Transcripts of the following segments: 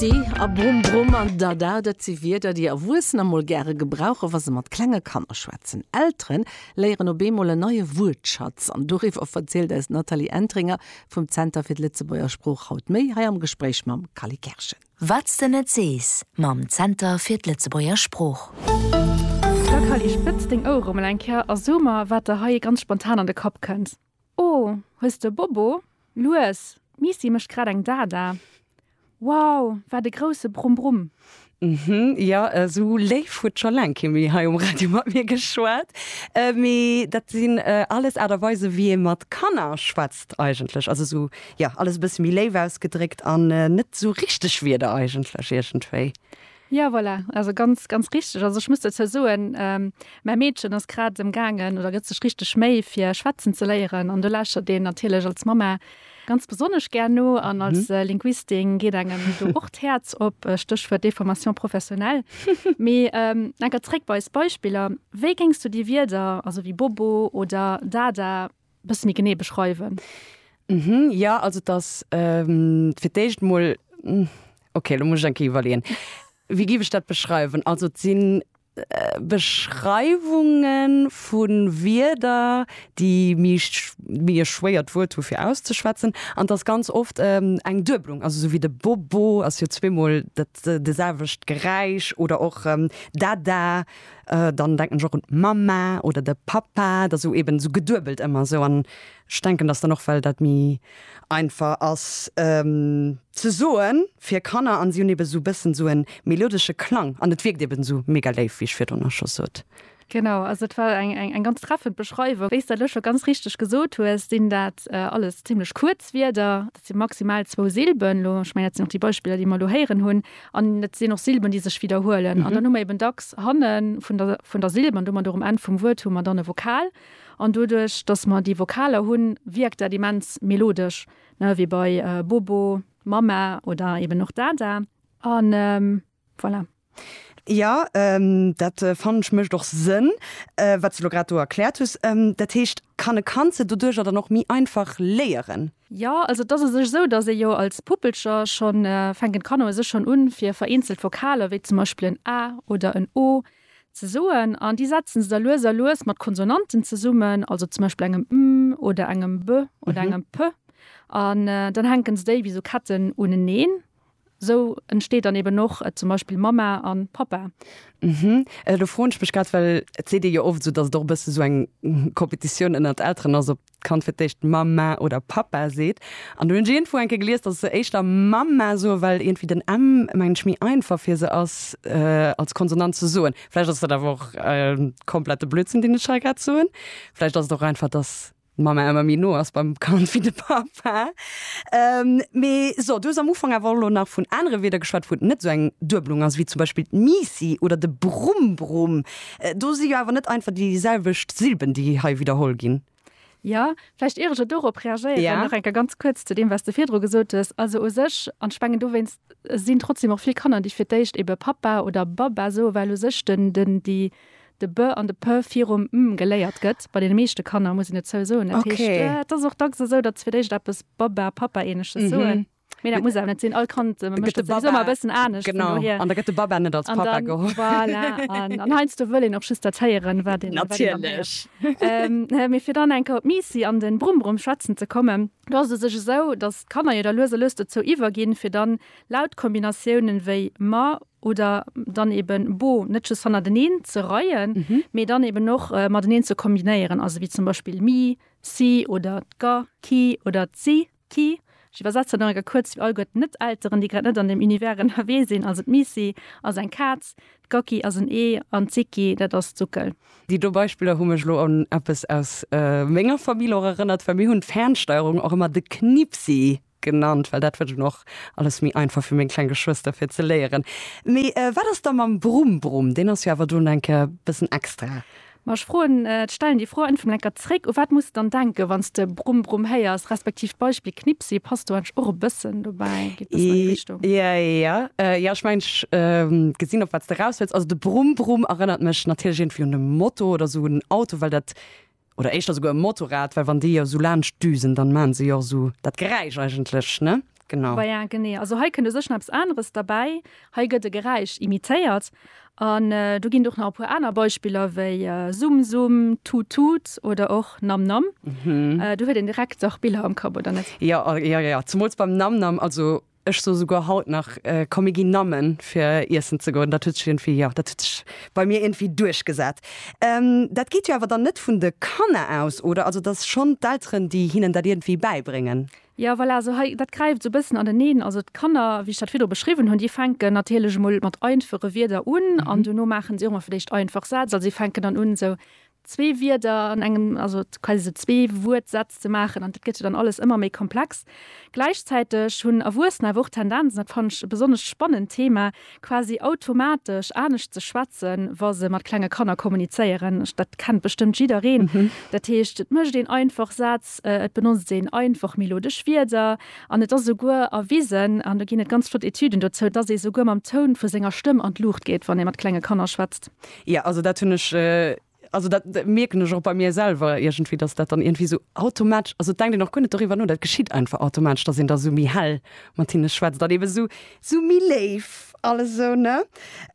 Sti a Brumm Brumm an Dada, dat si Wierder, déi Erwuessener mol gäre gebrauchen, wa se mat klenge Kanner schwätzen. Eltere léieren op eemol en neie Wuertschatz. An doriwwer verzielt eis Nathalie Entringer vum Zenter fir d'Lëtzebuerger Sprooch haut méi, hei am Gespréich mam Kally Kerschen. Wat s de net sees mam Zenter fir d'Lëtzebuerger Sprooch. Da Kally, spëtz deng Ouere mol eng Kéier a so mer, wat der hei ganz spontan an de Kapp kënnt. Oh, hues de Bobo? Lues, d'Misi mécht grad eng Dada. Wow, wat e grousse Brumm-Brumm! Mhm, jo, esou léif huet scho laang kee méi hei um Radio mat mir geschwat. Mee dat sinn alles Aart a Weisen, wéi ee mat Kanner schwätzt eigentlech. Also esou, jo, alles e bësse méi léif ausgedréckt an net esou richteg Wierder eigentlech iergendwéi. Jo voilà, also ganz ganz richteg. Also ech muss dozou soen, mäi Meedchen ass grad em gaangen oder gëtt sech richteg Méi fir schwätzen ze léieren an do lauschtert een natierlech als Mamma ganz besonnesch gär no an als Linguistin geet engem do och d'Häerz op, Stéchwuert Déformation professionnelle. Mee enker zréck bei eis Beispiller, wéi géings du déi Wierder also wéi Bobo oder Dada bësse méi genee beschreiwen? Mhm, jo, also et ass fir d'éischt emol, okay, elo muss ech eng Kéier iwwerleeën, wéi géif ech dat beschreiwen? Also et si Beschreiwunge vu Wierder, déi méi méi e schwéiert Wuert hu fir auszeschwätzen. An et ass ganz oft eng Dueblung, also esou wéi de Bobo ass jo zweemol dat de selwecht Geräisch oder och Dada, Dann denken ech och un d'Mamma oder de Pappa, et ass esou eben esou geduebelt ëmmer esou. An ech denken, datt dann och, well dat méi einfach ass ze soen fir Kanner an si hunn eben esou e bëssen esou e melodesche Klang an et wierkt eben esou mega léif, wéi ech virdrun och scho sot. Genau, also et war eng ganz treffend Beschreiwung. Wéi s de lech scho ganz richteg gesot hues, sinn dat alles zimmlech kuerz Wierder. Et si maximal zwou Silben, elo, ech mengen, dat sinn och déi Beispiller, déi mer elo héieren hunn. An et sinn och Silben, déi sech widderhuelen. An dann hu mer eeben dacks hanne vun der, vun der Silb an domat och um Enn vum Wuert hu mer dann e Vokal. An doduerch, datt mer déi Vokaler hunn, wierkt dat immens melodesch, ne, wéi bei Bobo, Mama oder eeben och Dada. An. Voilà. Jo, dat fannen ech mécht och Sënn, wat s de elo grad do erkläert hues. Dat heescht, kann e Kand se doduerjer dann och méi einfach léieren? Jo, also et ass u sech esou, datt ee jo als Puppelcher schonn, fänken d'Kanner u sech schonn un, fir vereenzelt Vokaler, wéi zum Beispill en A oder en O ze soen. An déi setzen se da lues a lues mat Konsonanten zesummen, also zum Beispill engem M oder engem B oder engem P. An dann hänken se déi wéi esou Ketten uneneen. Sou entsteet dann eben och zum Beispill Mamma an Pappa. Mhm. Do froen ech mech grad, well et seet ee jo oft esou, dass et och e bësse sou eng Competitioun ënnert Elteren ass, ob d'Kand fir d'éischt Mamma oder Pappa seet. An hunn ech iergendwou enke gelies, dass se éischter Mamma soen, well iergendwéi den M, mengen ech, méi einfach fir se ass als Konsonant ze soen. Vläicht ass dat awer och komplette Blödsinn, deen ech hei grad soen. Vläicht ass et och einfach, dass. D'Mamma ëmmer méi no ass beim Kand wéi de Papa. Mee so, du hues am Ufank awer och elo nach vun anere Wierder geschwat, wou et net esou eng Duebelung ass, wéi zum Beispill d'Misi oder de Brumm-Brumm. Do si jo awer net einfach déi selwecht Silben, déi hei widderholl ginn. Jo, vläicht ier ech elo dorop reagéieren, nach eng Kéier ganz kuerz zu deem, wat s de virdru gesot hues. Also u sech, an ech mengen dowéinst sinn trotzdem och vill Kanner, déi fir d'éischt ebe Papa oder Baba soen, well u sech den, den, déi, de b an de p virum m geléiert gëtt, bei deene meeschte Kanner, muss een et zou soen. Dat heescht, et ass och dacks esou, datt se fir d'éischt eppes Baba, Papa-ähnleches soen. Mee dat muss awer net sinn. All Kand mécht dat souwisou ëmmer e bëssen anescht. Vun dohier. An da gëtt de Baba net als Papa geholl. Voilà. An, an heiansdo wëll een och just dat héieren, wat een, wat een dann héiert. Natierlech. Mee fir dann eng Kéier op d'Misi an de Brumm-Brumm schwätzen ze kommen, do ass et sech esou, datt d'Kanner jo da lues a lues dozou iwwerginn, fir dann Lautkombinatiounen wéi ma, oder dann eben Bo net just hannerteneen ze reien, mee dann eben och mateneen ze kombinéieren, also wéi zum Beispill mi, si oder d'ga, ki oder d'si, ki. Ech iwwersetze nach eng Kéier kuerz fir all guer d'Net-Elteren, déi grad net an deem Univers ënnerwee sinn, also d'Missi ass eng Kaz, d'Gacki ass en Ee an d'Sicki, dat ass d'Suckel. Déi do Beispiller hu mech elo un eppes aus menger Famill och erënnert, well mir hunn d'Fernsteierung och ëmmer de Knippsi genannt, well dat wëllt en och alles méi einfach fir meng kleng Geschwëster fir ze léieren. Mee wat ass da mam Brumm-Brumm? Deen ass jo awer dunn eng Kéier e bëssen extra. Ma ech froen, stellen déi Fro einfach mol eng Kéier zréck, u wat muss de dann denken, wann s de Brumm-Brumm héiers, respektiv d'Beispill Knippsi passt do eigentlech och e bëssen dobäi, geet e bëssen an déi Richtung. Je, jo, jo, ech mengen, ech gesinn, op wat s de eraus wëlls. Also de Brumm-Brumm erënnert mech natierlech iergendwéi un e Moto oder esou un en Auto, well dat oder éischter souguer e Motorrad, well wann déi jo esou laanscht düsen, dann maachen se jo och esou dat Geräisch eigentlech, ne? Genau. Bah ja, genee. Also hei kënnt u sech nach eppes aneres derbäi, hei gëtt e Geräisch imitéiert an do ginn et och nach e puer aner Beispiller wéi Summ Summ, Tut Tut oder och Nam Nam. Do huet een direkt dach Biller am Kapp, oder net? Jo, jo, jo, zemools beim Nam Nam. Also. Ech soe souguer haut nach, komm mir ginn Nammen fir iessen ze goen. Dat huet sech iergendwéi, jo, dat huet sech bei mir iergendwéi duerchgesat. Dat geet jo awer dann net vun de Kanner aus, oder? Also et ass schonn d'Elteren, déi hinnen dat iergendwéi bäibréngen. Jo, voilà, also hei, dat gräift esou e bëssen aneneen. Also d'Kanner, wéi ech dat virdru beschriwwen hunn, déi fänken natierlech emol mat einfache Wierder un an dono maachen si och emol vläicht einfach Sätz. Also si fänken dann un esou, zwee Wierder an engem, also quasi esou zwee Wuertsätz ze maachen, an dat gëtt jo dann alles ëmmer méi komplex. Gläichzäiteg hunn Erwuessener awer och d'Tendenz, an dat fannen ech e besonnescht spannend Thema, quasi automatesch anescht ze schwätzen, wa se mat klenge Kanner kommunizéieren. Dat kennt bestëmmt jiddereen. Dat heescht, et mécht een einfach Sätz, et benotzt een einfach melodesch Wierder an et ass esouguer erwisen, an do ginn et ganz flott Etüden dozou, dass ee souguer mam Toun vu senger Stëmm an d'Luucht geet, wann ee mat klenge Kanner schwätzt. Ja, also dat hunn ech, also dat mierken ech och bei mir selwer iergendwéi, datt dat dann iergendwéi esou automatesch, also et denkt een och guer net doriwwer no, dat geschitt einfach automatesch, datt een da esou méi hell mat hinne schwätzt an eebe esou, esou méi léif an esou, ne.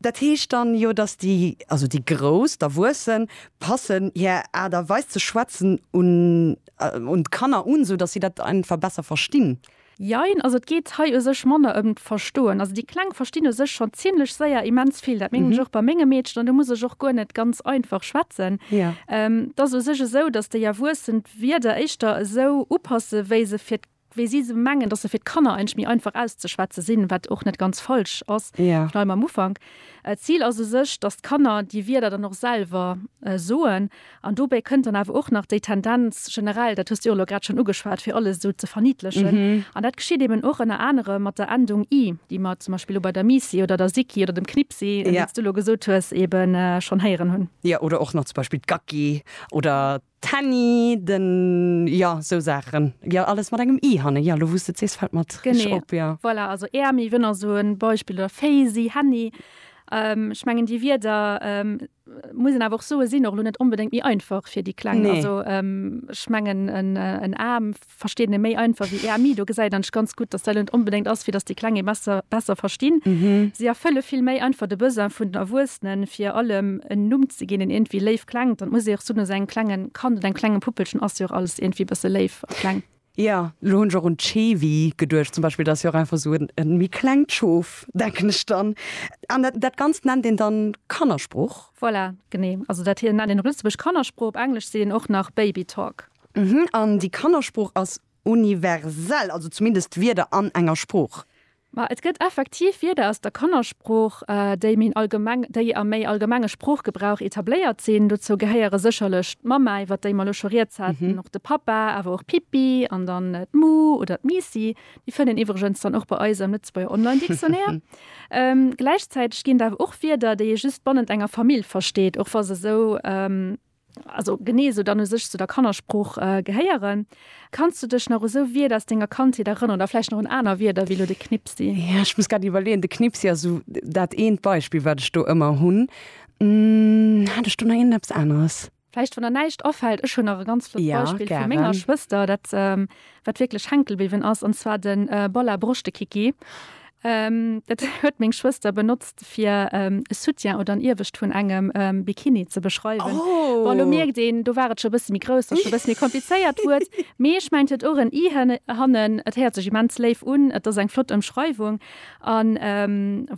Dat heescht dann jo, datt déi, also déi Grouss, d'Erwuessen, passen hir Aart a Weis ze schwätzen un, un d'Kanner un, esou datt si dat einfach besser verstinn. Jein, also et geet hei u sech manner ëm d'Verstoen. Also déi Kleng verstinn u sech schonn zimlech séier immens vill. Dat mengen ech och bei mengem Meedchen an do muss ech och guer net ganz einfach schwätzen. Et ass u sech esou, datt déi Erwuessen d'Wierder éischter esou upassen, wéi se fir, wéi si se mengen, datt se fir d'Kanner eigentlech méi einfach auszeschwätze sinn, wat och net ganz falsch ass. Ech bleiwen am Ufank. D'Zil ass u sech, datt d'Kanner déi Wierder dann och selwer soen An dobäi kënnt dann awer och nach déi Tendenz generell, dat hues de jo elo grad schonn ugeschwat, fir alles esou ze verniedlechen. An dat geschitt eben och ënner anerem mat der Endung i, déi mer zum Beispill elo bei der Misi oder der Siki oder dem Knipsi, wéi s du elo gesot hues, eben schonn héieren hunn. Jo, oder och nach zum Beispill d'Gacki oder d'Henni, den, jo, esou Saachen. Jo, alles mat engem i hannen. Jo, elo wou s de et sees, fält mer et reg op, jo. Voilà, also Äermi, wënner, esou e Beispill, oder Féisi, Henni. Ech mengen, déi Wierder muss een awer och soe sinn och lo net onbedéngt méi einfach fir déi Kleng. Nee. Also ech mengen en A versteet e méi einfach wéi EMI. Do gesäit ech ganz gutt, datt dat net onbedéngt ass, fir datt déi Kleng ee besser besser verstinn. Si erfëlle vill méi einfach de Besoin vun den Erwuessenen, fir allem en Numm ze ginn, deen iergendwéi léif klengt. An et muss ee och soen, esou engem klengen Kand oder engem klenge Puppelchen ass jo och alles iergendwéi e bësse léif a kleng. Jo, elo hunn ech och un d'Schewi geduecht zum Beispill. Dat ass jo och einfach esou e méi klengt Schof, denken ech dann. An dat Ganzt nennt een dann Kannersprooch? Voilà, genee. Also dat hei nennt een op Lëtzebuergesch Kannersprooch, op Englesch seet een och nach Baby Talk. An déi Kannersprooch ass universell, also zumindest d'Wierder an enger Sprooch? Ma et gëtt effektiv Wierder aus der Kannersprooch, déi méi allgemeng, déi am méi allgemenge Sproochgebrauch etabléiert sinn. Dozou gehéiere sécherlech d'Mamma, iwwert déi mer elo scho Rieds haten, och de Pappa, awer och Pippi an dann d'Mu oder d'Miissi. Déi fënnt een iwwregens dann och bei eis am Lëtzebuerger Online-Dictionnaire. Gläichzäiteg ginn et awer och Wierder, déi ee just bannent enger Famill versteet, och wa se esou also genee esou dann u sech zu der Kannersprooch gehéieren. Kanns du dech nach u sou Wierder aus denger Kandheet erënneren oder vläicht nach un aner Wierder wéi elo de Knipsi? Jo, ech muss grad iwwerleeën. De Knipsi ass esou dat eent Beispill, wat ech do ëmmer hunn. Hat ech do nach iergend eppes aneres? Vläicht, wann der näischt afält. Ech hunn nach e ganz flott Beispill vu menger Schwëster, dat wat wierklech hänkel bliwwen ass, an zwar de Bolla Broschtekiki. Dat huet meng Schwëster benotzt, fir e Soutien oder en Iewescht vun engem Bikini ze beschreiwen. Bon, elo mierkt een, do war et scho e bësse méi grouss, datt scho e bësse méi komplizéiert Wuert. Mee ech mengen, et huet och en i hannen. Et héiert sech immens léif un, et ass eng flott Ëmschreiwung an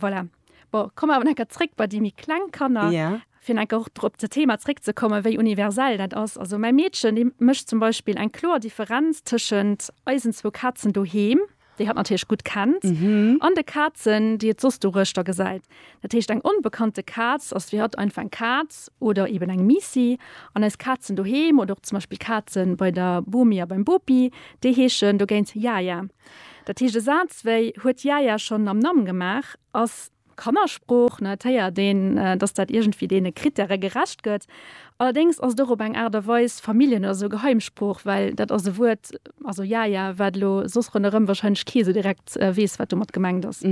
voilà. Bon, komme mer awer nach eng Kéier zréck bei déi méi kleng Kanner. Ja. Fir nach eng Kéier och op dat Thema zréckzekommen, wéi universell dat ass. Also mäi Meedchen, déi mécht zum Beispill eng kloer Differenz tëschent eisen zwou Kazen doheem, déi hatt natierlech gutt kennt, an de Kazen, déi et soss doruechter gesäit. Dat heescht, eng onbekannte Kaz ass fir hatt einfach eng Kaz oder eeben eng Miissi. An eis Kazen doheem oder och zum Beispill d'Kaze bei der Bomi a beim Bopi, déi heeschen dogéint Yaya. Dat heescht, e Saz wéi huet Jä Jä schonn am Namm gemaach ass Kannersprooch. Et héiert een, datt dat iergendwéi deene Krittäre gerecht gëtt. Allerdéngs ass et och op eng Aart a Weis Familljen oder esou Geheimsprooch, well dat ass e Wuert, also Jä Jä, wat elo soss ronderëm warscheinlech kee sou direkt weess, wat domat gemengt ass.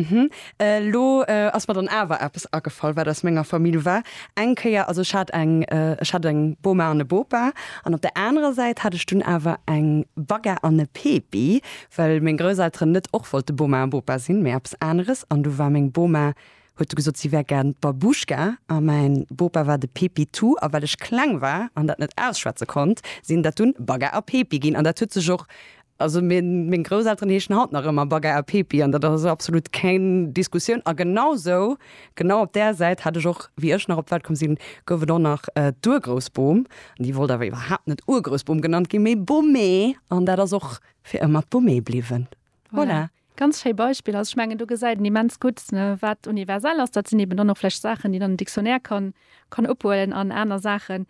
Elo ass mer dann awer eppes agefall, wat aus menger Famill war. Eng Kéier, also ech hat eng, ech hat eng Boma an e Bopa an op der anerer Säit hat ech dunn awer eng Bagga an e Pepi, well meng Grousselteren net och wollte Boma a Bopa sinn, mee eppes aneres. An du war meng Boma, huet du gesot, si wär gär d'Babouschka a mäin Bopa war de Pepitou. A well ech kleng war an dat net ausschwätze konnt, sinn dat dunn Bagga a Pepi ginn. An dat huet sech och Also meng Grousselteren heeschen haut nach ëmmer Bagger a Pepi an dat ass also absolut keng Diskussioun. A genau sou, genau op där Säit hat ech och, wéi ech nach op d'Welt komm sinn, gouf et och nach d'Urgroussbom. An déi wollt awer iwwerhaapt net Urgroussbom genannt ginn, mee Bommee. An dat ass och fir ëmmer d'Bommee bliwwen. Voilà. Ganz schéi Beispill. Also ech mengen do gesäit een immens gutt wat universell ass. Dat sinn eben dann och vläicht Saachen déi dann den Dictionnaire kann kann ophuelen an aner Saachen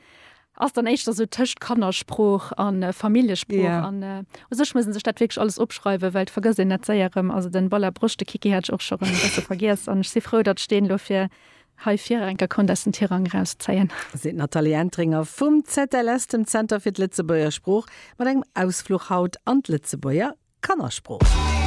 ass dann éischter sou tëscht Kannersprooch a Familljesprooch. Yeah. An u sech muss ee sech dat wierklech alles opschreiwen, well et vergësst een dat séier erëm. Also den Ball a Broscht, de Kiki hat ech och scho erëm e bësse vergiess an ech si frou datt ech deen elo fir hei virer eng Kéier konnt aus den Tirang erauszéien. Seet d'Nathalie Entringer vum ZLS, dem Zenter fir d'Lëtzebuerger Sprooch, mat engem Ausfluch haut an d'Lëtzebuerger Kannersprooch.